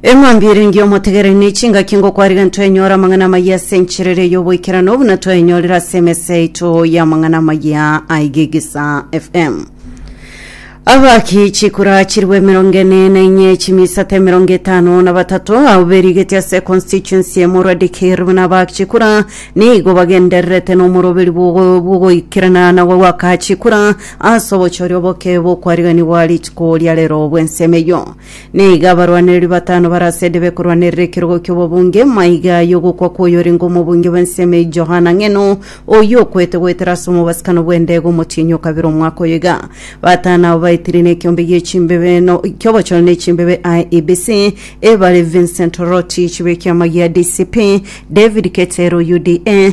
eng'ombe ere ngiya omotegereri ne chingaki ngokwariga ntwenyora amang'ana amaya ase encherero y'oboikerano buna twaenyorire ase emesa yaito y'amang'ana amaya aigigisa fm abaki chikura chirwe emerongo ene na inye chimisata emerongo etano na batato abo berigeti ase constituency emorwa dikir buna abaki chikura nigo bagendererete nomoroberi bw'ogoikerana na gwaka chikura Ase obochori oboke bokwariganigwa rituko ria rero bw'ensemo eyio, nigo abarwanereri batano bare ase Edebe korwanerera ekerogo ki'obobunge. Maiga y'ogokwa kw'oyorenge omobunge bw'ensemo eyio Johana Ng'eno, oyio okwete goetera ase omobasikano bw'endege omotienyi okabera omwaka oyo iga. Batano abo baetirie nekiombe gi'echimbebe no ki'obochore ne chimbebe IEBC, ebare Vincent Rotich b'ekiama gia DCP, David Keter, UDA,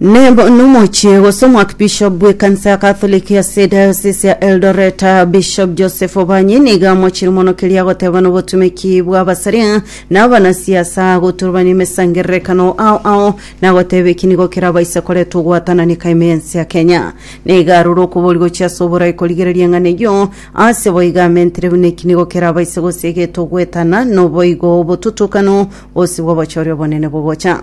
Neb- nomochie gose omwakibishop bw'ekanisa ya Katholiki ase diocese ya Eldoret Bishop Joseph Obanye nigo amochire mono keria agoteba nobotumeki bw'abasaria na abanasiasa goturubania emesangererekano ao ao nagoteba eki nigo kerabaise koreta ogwatanani kaime y'ense ya Kenya. Nigo arure okobori gochia ase oborai korigereria eng'ana eyio ase boigo amentire buna eki nigo kerabaise gosiegeta ogwetana noboigo obotutukanu bosibwe obochore obonene bogocha.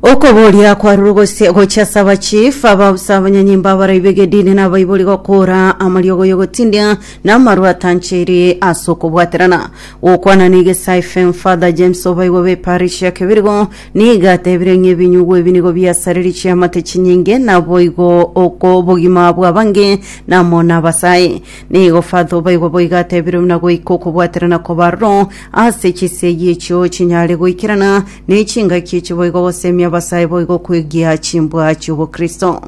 Okoboria kwarure gose gochia ase abachief abaabisa abanyanyimbo abaroi b'egedini na abaibori gokoora amariogo y'ogotindia na amarwa atancheiri ase okobwaterana. Gokwana na Igesai Fame Father James Obaigwa b'eparish ya Kebirigo nigo atebire ng'a ebinyugwa ebi nigo biasarerie chiamate chinyinge naboigo oko obogima bw'abange na amo nabasae. Nigo Fatho baigwa boigo atebirwe buna goika okobwaterana koba aroro ase chisegi echio chinyare goikerana ne chingaki echi boigo gosemia abasae boigo kwegia chimbwa chi'obokristo.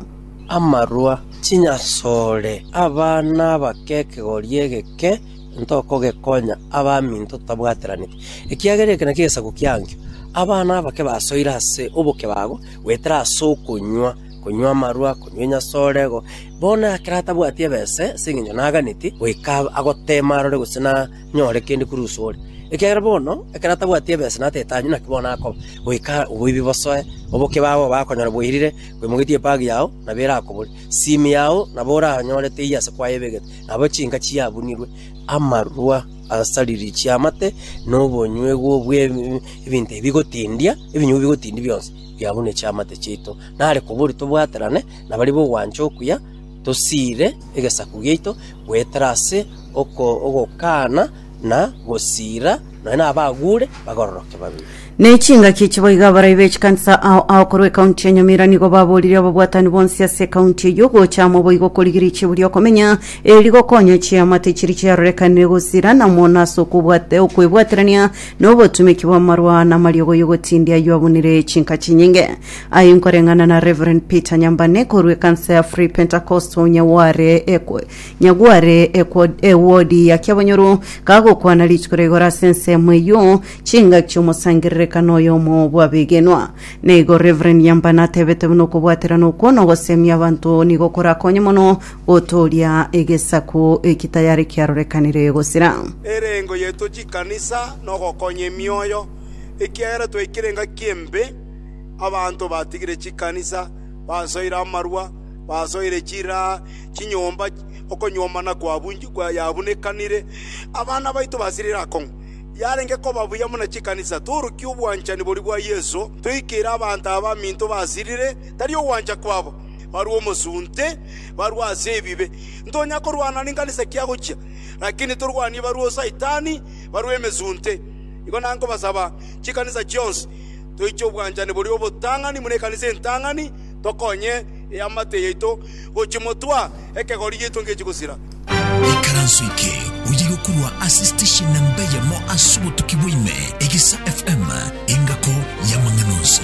Amarwa, Chinyasore, abana abake ekegori egeke ntokogekonya abaminto totabwateraneti, ekiagera eke nakio egesaku kiankio. Abana abake basoire ase oboke bago goetera ase okonywa. konywa amarwa, konywa enyasorego, bono ekero atabwati ebese, ase engencho naganeti, goika agoteema arore gose nanyore kende korwa uso ore. Ekiagera bono, ekero atabwati ebese natete anywe, naki bono akoba, goika oboibi bosoe, oboke bwabo bakonyora bwairire, bwemogetie epagi yao, nabo erakobore. Simi yao nabo oranyore teiyo ase kwayebegete, nabo chinka chiabunirwe. Amarwa asariri chiamate, na obonywegwa bw'ebinto ebi bigotindia, ebinyugwa bigotindia bionsi, biabune chiamate chiaito. Nare koborio tobwaterane nabaria b'ogwancha okuya, tosiire egesaku giaito goetera ase ogokana na gosiira, nonya nabagure bagororoke babere. Na echingaki echi boigo abarai be chikanisa ao ao korwa ekaunti ya Nyamira nigo baboririe ababwatani bonsi ase ekaunti eyio gocha amo boigo korigiria chibu ri'okomenya, eri gokonya chiamate chiria chiarorekanire gosiira na mono ase okobwate okwebwaterania na obotumeki bw'amarwa na amariogoyio gotindia ayio abunire chinka chinyinge. Aye nkoreng'ana na Rev. Peter Nyambane korwa ekansa ya Free Pentecostal Nyagware ekw- Nyagware ekwo- ewodi ya Kiabonyoru kagokwana rituko ria igoro ase ensemo eyio chingaki chi'omosangererekano oyomo bw'abegenwa. Na igo Rev. Nyambane atebete buna okobwaterana okwo na ogosemia abanto nigo korakonye mono gotooria egesaku eki tayare kiarorekanire gosira. Erengo yaito chikanisa nogokonya emioyo, ekiagera twaikire engaki embe. Abanto batigire chikanisa, basoire amarua, basoire chiraa, chinyomba, okonyuomana kwabunekanire. Abana baito basirire akong'u. Yarenge koba buya buna chikanisa torukia obwanchani boria bwa Yeso, toikere abanto aba baminto basirire, tari ogwancha kwabo, barue omosunte, barue ase ebibe. Ntonya korwana nenkanisa ki agochia, lakini torwanie barue o Saitani, barue emesunte. Igo nankobasaba chikanisa chionsi. toiche obwanchani boria obotang'ani buna ekanisa entang'ani, tokonye eamate yaito gochia motwa, ekegori giaito ngechie gosira. Ekaranso eke oye yokorwa ase station na mbeyemo ase obotuki bwaime, Egesa FM, engako y'amang'ana onsi.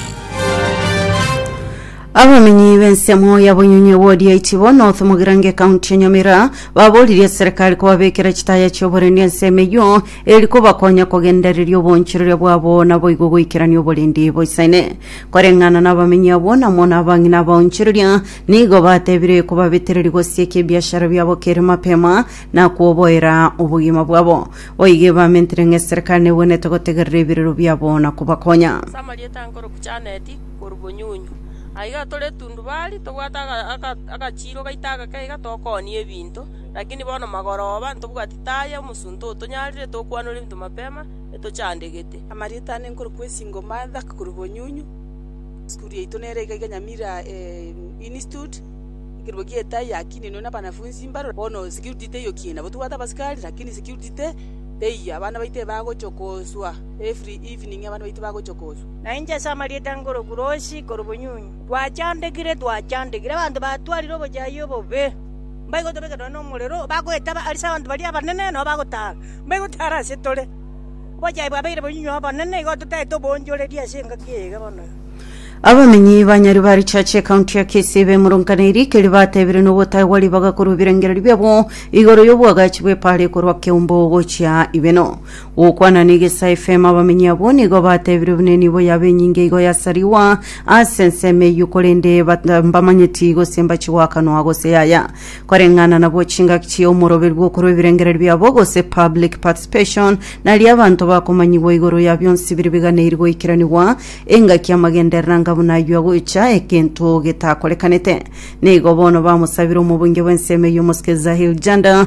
Abamenyi b'ensemo ya Bonyonye ward ya Ichibo North Mugirango ekaunti ya Nyamira baboririe serikali kobabekera chitaya chioboreni ensemo eyio eri kobakonya kogendereria obonchereria bwabo naboigo goikerania oborendi boisaine. Koreng'ana nabamenyi abwo na mono abang'ina abaonchereria nigo batebire kobabetereria gosieka ebiashara biabo kere mapema na koboera obogima bwabo. Boigo ebamentire ng'a eserikari negwenerete gotegerera ebirero biabo na kobakonya. Ase amarieta ankoroku Janeti korwa Bonyunyu. Aiga tore tundubari, tobwate aga- aga- agachiiro gaito agake iga tokoonia ebinto, lakini bono magoroba ntobwati. Taya omosunte oo tonyarire tokwanore ebinto mapema etochandegete. Marieta ne nkoro kwesingo Martha korwa bonyunyu Sukuru yaito nere iga iga Nyamira Institut ekerua gie Taya akininwe na banafunzi mbaro bono security teiyo kie nabo tobwate abasikari lakini security te teiyo abana baito ebagochia koswa every evening abana baito bagochia koswa. Na inche ase amarieta nkoro Kuroshi korwa bonyunyu. Twachandegire twachandegire abanto batwarire obochayia obobe. Mbaigotobeka nonya nomorero, bagoetaba ase abanto baria abanene, nabo bagotara, mbaigotara ase tore. Obochai bwabeire bonyinyi obonene, igo totaete oboonchoreria ase engaki eye iga bono. Abamenyi ba Nyaribarichurch ekaunti ya Kisii bemoronkaneirie ekeri batebirie nogotaegwa ribaga korwa ebirengererio biabo igoro yobwagachi bw'epara ekorwa Keumbu gochia Ibeno. Gokwana negesa efemo abamenyi abwo nigo batebire buna nibo yaba enyinge igo yasariwa ase ensemo eyio korende bata mbamanyeti gose mbachigoakanwa gose yaya koreng'ana nabwo chingaki chia omoroberi bw'okorwa ebirengererio biabo gose public participation naria abanto bakomanyigwa igoro ya bionsi biri biganeiri goikeranigwa engaki amagenderera nga buna ayio agocha egento getakorekanete nigo bono bamosabire omobunge bw'ensemo eyio Mosque Zahir Janda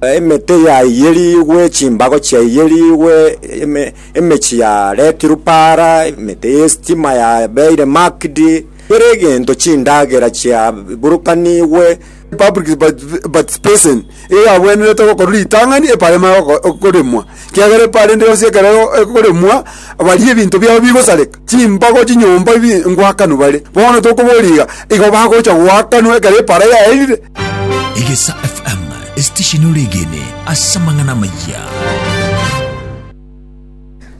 Emete yaiyerigwe, chimbago chiaiyerigwe, emechie yaretirwe para, emete y'esitima yabeire marked, kera egento, chindagera chiaburukanigwe. Public participation igo yagwenerete gokorwa ritang'ani epara emare koremwa, ekiagera epara ende yonsi ekero ekoremwa baria ebinto biabo bigosareka, chimbago, chinyomba, ngwakanwe bare. Bono tokoboria iga, igo bagocha goakanwa ekero epara yaerire. Egesa FM, esitesheni oregene ase amang'ana amayia.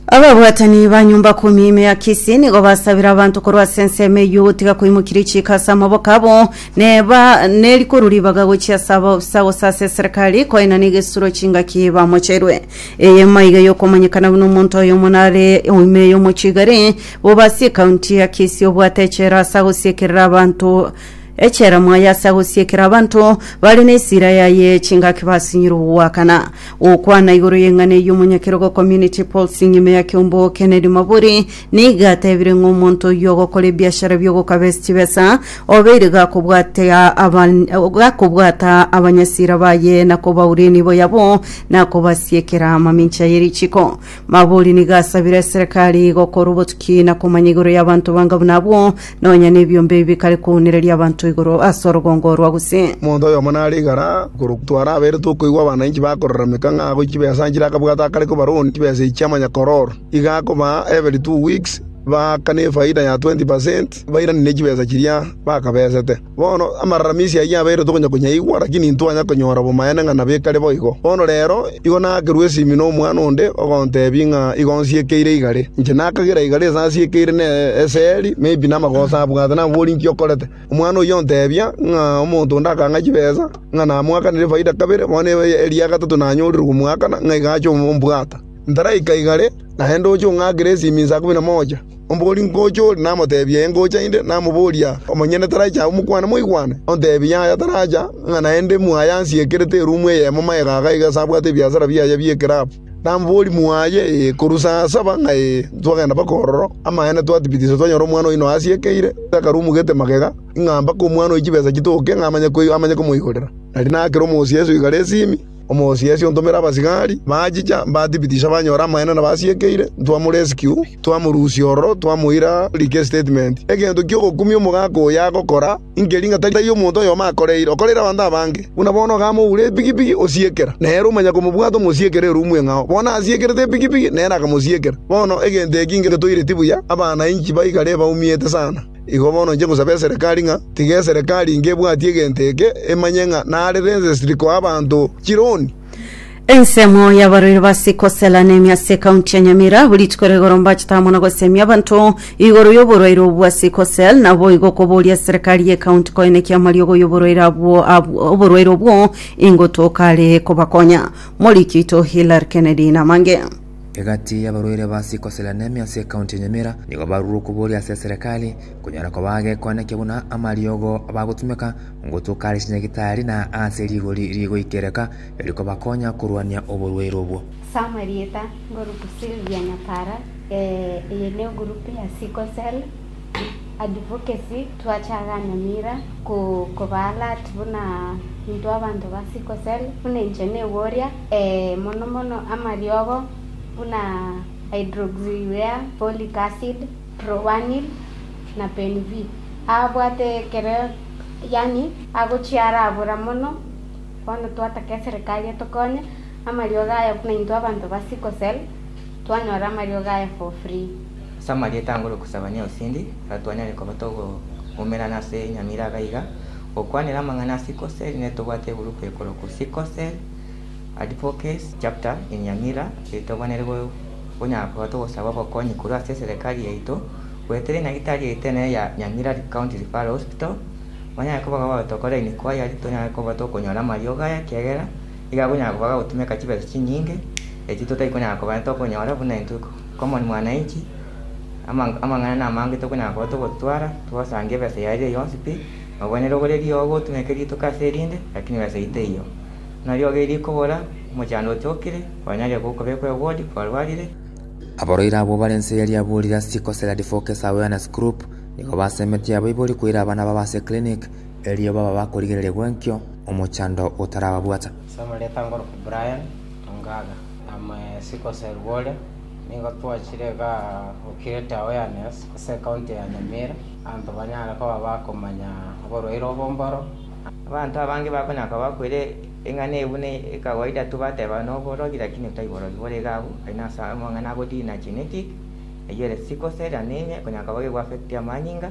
Ababwatani ba nyumba kumi ime ya Kisii nigo basabire abanto korwa ase ensemo eyio gotiga koimokiria echiiko ase amaboko abo neba nerikoro ribaga gochia ase abaofisa gose ase eserikari koenana egesuro chingaki bamocherwe. Eye maiga yokomanyekana buna omonto oyomo nare oime y'omochie igare bobe ase ekaunti ya Kisii obwate echela ase agosiekerera abanto Echiaromo aye ase agosiekera abanto bare nesira yaye chingaki basinyire ogoakana gokwana igoro y'eng'ana eyio omonyakerogo Community Pulse nyuma ya kiombo Kennedy Maburi nigo atebire ng'a omonto oyio ogokora ebiashara bi'ogokabes chibesa obeire gakobwatia aban gakobwata abanyasira baye na kobaureni boyabo na kobasiekera amamincha ye richiko Magori nigo asabire eserekari gokorwa obotuki na komanya igoro y'abanto banga buna abwo, nonya nebiombe ebi bikare kounereria abanto igoro ase orogongo rwa gose. Omonto oyomo nare igara korwa tware aberete okoigwa abananchi bakorarameka ng'a agochie chibesa nchire akabwate akare kobaroni chibesa echi chi'amanyakororo. Iga akobaa every two weeks, baaka nefaida ya twenty percent bairanie ne chibesa chiria bakabesete. Bono amararamisi ayio yabeire tokonya konyaigwa, lakini intwanya konyora bomaene ng'a nabekare boigo. Bono reero igo naakerwa esimi nomwana onde, ogontebia ng'a igo nsiekeire igare. Inche nakagera igare ase asiekeire ne eseri, maybe namagoso abwate nabori inki okorete. Omwana oyio ontebia ng'a omonto onde akang'a chibesa, ng'a namoakanere efaida kabere, bono eria gatato nanyorire komoakana, ng'a iga ache ombwata. Ntaraika igare, naende oche ong'akere esimi inse ikomi na moja. Omogori ngocha ore namoteebia eye ngocha inde, namoboria, Omonyene taraiche agwo mokwane moigwane? Onteebie yaya taracha, ng'a naende mwaye ansiekerete eruumu eyemo magega aga iga ase abwate ebiasara biaye bi'ekerabu. Namoboria mwaye, Ee, korwa saa saba ng'a ee, ntwagenda mpaka ororo. Amaene twatibitisa twanyora omwana oino asiekeire, takarumugete magega, ing'a mpaka omwana oyo chibesa chitoke ng'a amanye komoigorera. Nari nakera omosie eswe igare esimi. Omosiasi ontomere abasigari, bachicha, mbatibitisha banyore amaene nabasiekeire, ntwamore esikyu, twamorusia ororo, twamoira like estatement. Egento ki'ogokumia omogaka oyo agokora, inkeri ng'a tari omonto oyomo akoreire, okoreire abanto abange. Buna bono okamoura epigipigi, osiekera, nere omanya komobwata omosiekere erumu eng'ao. Bono asiekerete epigipigi, nere akamosiekera. Bono egento eki ngetoireti buya, abana inki baikare baumiete sana? Igo bono inche ngosaba eserekari ng'a tiga eserekari inge ebwati egento eke emanye ng'a nare rensesiri koa abanto chironi. Ensemo y'abarweri ba Sickle Cell Anemia ase ekaunti ya Nyamira abwo rituko ria igoro mbachete amo na gosemia abanto igoro y'oborwaire obwo bwa Sickle Cell naboigo koboria eserekari y'ekaunti koenekia amariogo y'oborwaire abwo abwo oborwaire obwo ingotoka are kobakonya. Moriki oito Hilary Kennedy Namange. Egati y'abarwaire ba sickle cell anemia ase ekaunti ya Nyamira nigo barure okoboria ase eserekari konyora koba agekonekia buna amariogo bagotumeka ngotuka are chinyagitari na aase rigori rigoikereka rikobakonya korwania oborwaire obwo. Sam erieta ngorutu Sylvia Nyapara, Ee, eye ne egurupu ya sickle cell Advocacy twachaaga Nyamira ko koba alert buna intwe abanto ba sickle cell buna inche neboria ee mono mono amariogo buna hydroxyurea, folic acid, proanil na penv abwate ekero yaani agochia arabura mono bono twataka eserekari etokonye amariogo aya buna intwe abanto ba sickle cell. Twanyora amariogo aye for free. Ase amarieta angoro okosaba ne osindi, ekero twanyare koba togoumerana ase enyamira aba iga, gokwanera amang'ana a sickle cell ne tobwate egurupu ekorokwa Sickle Cell Advocacy Chapter in Nyamira eye tokwanere konyara koba togosaba obokonyi korwa ase eserekari yaito, goetera enyagitari yaito enene ya Nyamira County Referral Hospital. Banyare koba bagotokoraini kwayari, tonyare koba tokonyora amariogo aya ekiagera Nigo akonyara koba gagotumeka chibesa chinyinge, echio totai konyara koba tokonyora buna intwe common mwananchi, amang'ana na amange tokonyara koba togotwara, togosanga ebesa yaye eria yonsi pi, nabo nere ogore riogo ogotumeke rituko ase erinde, lakini ebesa eyio teiyo. Buna riogo eri rikobora, omochando ochokire, kwanyarire gokobekwa ewodi, kwarwarire. Abarwaire abwo bare inse yaria aborire ase chikosera Advocacy Awareness Group nigo basemetie abaibori koira abana babo ase clinic, Erio baba bakorigereria gwenkio omochando otarababwata. Ase amarieta ngoroka Brian Ongaga. Amo esiko Serugore nigo twachire iga Occurate Awareness ase County ya Nyamira abanto banyare koba bakomanya oborwaire obo mboro. Abanto abange bakonyara koba bakwire eng'ana eyio buna ekawaida tu bateba noborogi lakini tai borogi bore iga abwo aye nase amang'ana agodina genetic eyio ere sickle cell anemia ekonyara koba gegoaffect amanyinga.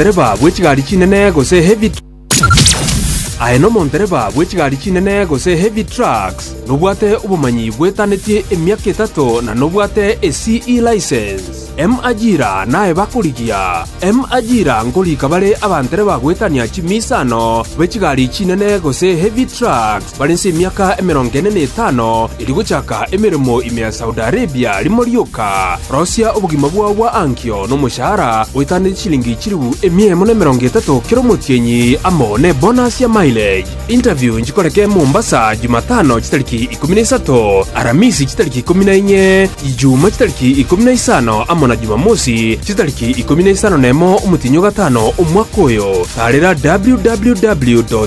Omondereba bw'echigari chinene gose heavy Aye nomondereba bw'echigari chinene gose heavy trucks, nobwate obomanyi bwetanetie emiaka etato na nobwate eCE license. M Ajira naye bakorigia. M Ajira nkorika bare abandereba goetania chimiisano b'echigari chinene gose heavy trucks. Bare inse emiaka emerongo ene na etano erio gochaka emeremo ime ya Saudi Arabia, rimo rioka rosia obogima bwao bwa ankio nomoshahara oetaneti chilingi chilifu emia emo na emerongo etato kera omotienyi amo nebonus ya mileage. Interview nchikoreke Mombasa Jumatano chitariki ikomi na isato, Aramisi chitariki ikomi na inye, Ijumaa chitariki ikomi na isano amo na Jumamosi chitariki ikomi na isano nemo omotienyi o gatano omwaka oyo. Taarera www.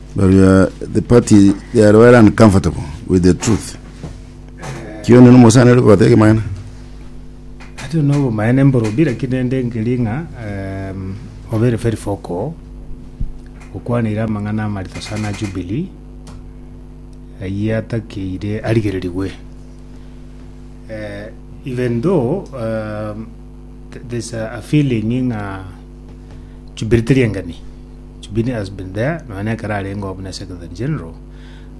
But we are the party, they are well and comfortable with the truth. Kio neno mosana ere kogoteka emang'ana. Ati ono obomaene mborobi lakini rende nkeri ng'a em, obere very focal okwanire amang'ana amarito sana a Jubilee ayia atakeire arigererigwe Eh, even though um, th- there's a, a feeling ng'a Jubilee teri engani. Jubilee has been there nonya nekero arengeo buna Secretary General.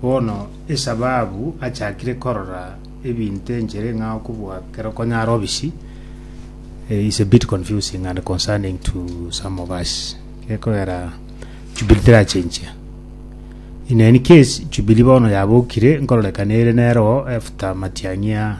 Bono esababu achakire korora ebinto enchere ng'a okobua kero konya are obisi eh, is a bit confusing and concerning to some of us. Gekogera Jubilee terachenchia. In any case, Jubilee bono yabokire nkororekana ere nero after Matiang'i a